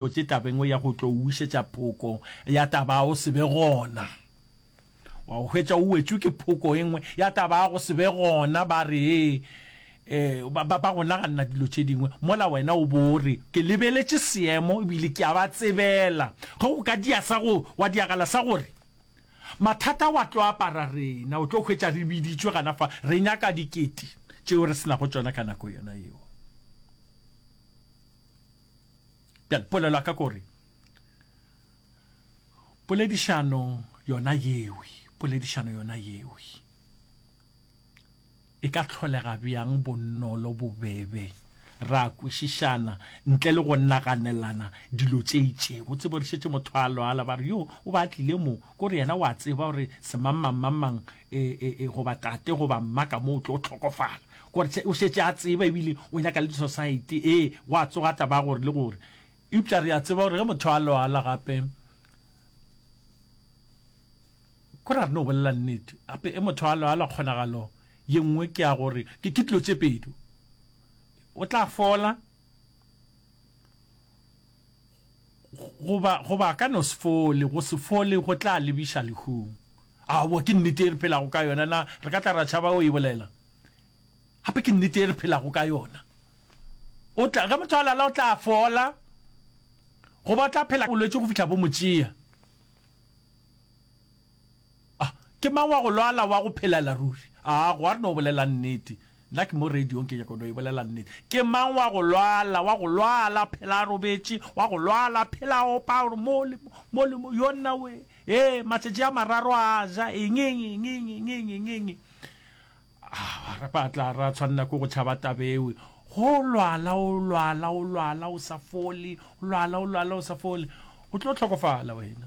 Botse tabeng ya go tlo o wišetša phoko ya taba ya go se be gona, wa go hwetša o wetšwe ke phoko e nngwe ya taba ya go se be gona. Ba re ee, ba, ba, ba go naganna dilo tše dingwe, mola wena o bo o re, Ke lebeletše seemo ebile ke a ba tsebela. Ge o ka dia sa go, wa diagala sa gore, Mathata wa tlo apara rena, o tlo hwetša re biditšwe gana fa, re nyaka dikete tšeo re se nago tšona ka nako yona yeo. Bjale polelo ya ka kore poledišano yona yewe, poledišano yona yewe e ka tlholega bjang bonolo bobebe ra kwešišana ntle le go naganelana dilo tše itšego tsebo re šetše motho a lwala ba re yo o ba tlile mo ko re yena wa tseba gore semangmangmangmang e, e, e, goba tate goba mma ka mo o tlo tlhokofala gore o šetše a tseba ebile o nyaka le disociety ee gwa tsoga taba gore le gore eupša re a tseba gore ge motho a loala gape ko ra re no bolela nnete gape e motho a loala kgonagalo ye nngwe ke ya gore ke dilo tse pedi o tla fola Goba, goba a ka no se fole, go se fole go tla lebiša lehung. Aowa, ke nnete ye re phelago ka yona. Na re ka tla ra tšhaba go e bolela? Gape ke nnete ye re phelago ka yona. O tla, ge motho a lala o tla fola, goba o tla phela bolwetši go fihla bo mo tšea. A, Ke mang wa go lwala wa go phelela ruri? A, Go a re no bolela nnete. Nna ke mo radiong ke nyaka no e bolela nnete. Ke mang wa go lwala wa go lwala phela a robetše, wa go lwala phela a opa a re, Mo le mo, mo le mo, yonna we, ee, matšatši a mararo a ja eng, eng, eng, eng, eng, eng, eng, eng, eng. A, ra ba tla ra tshwanela ke go tšhaba taba ewe. Go lwala o lwala o lwala o sa fole, o lwala o lwala o sa fole. O tlo hlokofala wena.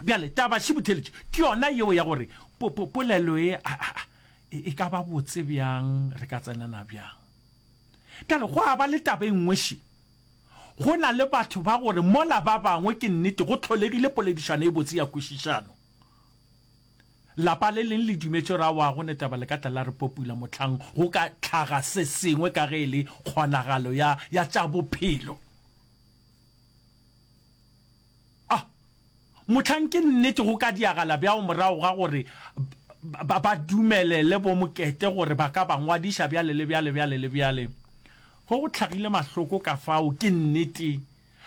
Bjale, taba šibotheletši ke yona yeo ya gore po, po, polelo ye a, a, a, e, e ka ba botse bjang, re ka tsenana bjang. Bjale, go a ba le taba e nngwe še. Go na le batho ba gore mola ba bangwe ke nnete go tlholegile poledišano e botse ya kwešišano. Lapa le leng le dumetše gore awa go netaba le ka tla la re popula mohlang go ka tlhaga se sengwe ka ge e le kgonagalo ya, ya tša bophelo. A mohlang ke nnete go ka diagala bjang morago ga gore ba ba dumelele bomokete gore ba ka ba ngwadiša bjale le bjale, bjale le bjale? Ge go hlagile mahloko ka fao, ke nnete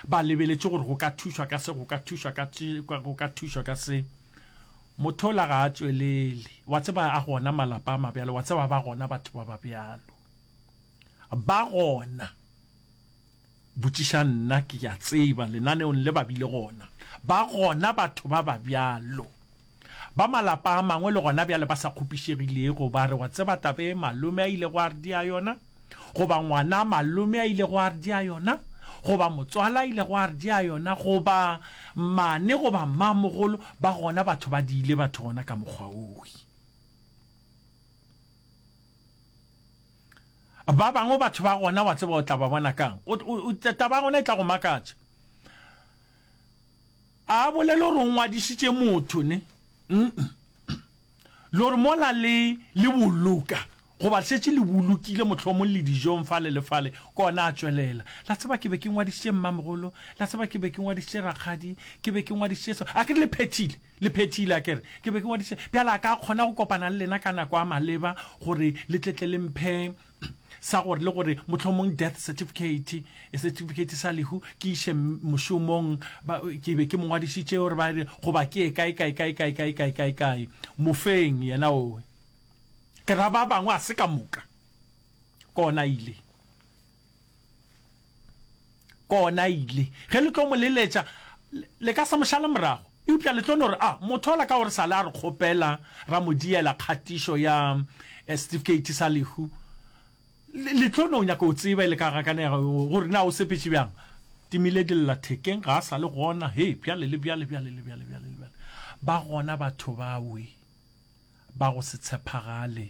ba lebeletše gore go ka thušwa ka se, go ka thušwa ka se, go ka thušwa ka se. Motho ola ga a tšwelele. Wa tseba, a gona malapa a mabjalo, wa tseba, ba gona batho ba ba bjalo. Ba gona. Botšiša nna, ke ya tseba lenaneong le ba bile gona, ba gona batho ba ba bjalo, ba malapa a mangwe le gona bjale ba sa kgopišegilego, ba re, Wa tseba taba e malome a ilego a re dia yona? Goba ngwana a malome a ilego a re dia yona? Goba motswala a ilego a re dia yona? Goba mmane goba mmamogolo? Ba gona batho ba diile batho gona ka mokgwa woo. Ba bangwe batho ba gona wa tseba o tla ba bona kang? O, o, o, taba ya gona e tla go makatša. A bolele gore o ngwadišitše motho, ne? Mm-mm. Le gore mola le, le boloka, goba šetše le bolokile mohlomong le dijong fale le fale, kona a tšwelela. La tseba ke be ke ngwadišitše mmamogolo, la tseba ke be ke ngwadišitše rakgadi, ke be ke ngwadišitše so. A ke re le phethile? Le phethile, a ke re. Ke be ke ngwadiše. Bjale a ka kgona go kopana le lena ka nako a maleba gore le tle tle le mphe sa gore le gore mohlomong death certificate, setifikeiti sa lehu, ke iše mošomong, ba, ke be ke mo ngwadišitše gore ba re goba ke ye kae, kae, kae, kae, kae, kae, kae, kae. Mofeng yena owe. Ke ra ba bangwe a se ka moka. Kona ile. Kona ile, ge le tlo mo leletša, le ka se mo šale morago. Eupša le tlo no re, A motho ola ka gore sa le a re kgopela, ra mo diela kgatišo ya setifikeiti sa lehu, le tlo no nyaka go tseba e le ka gakanego gore na o sepetše bjang. Timile dillathekeng, ga a sa le gona. He, bjale le bjale, bjale le bjale, bjale le bjale. Ba gona batho bawe ba go se tshepagale.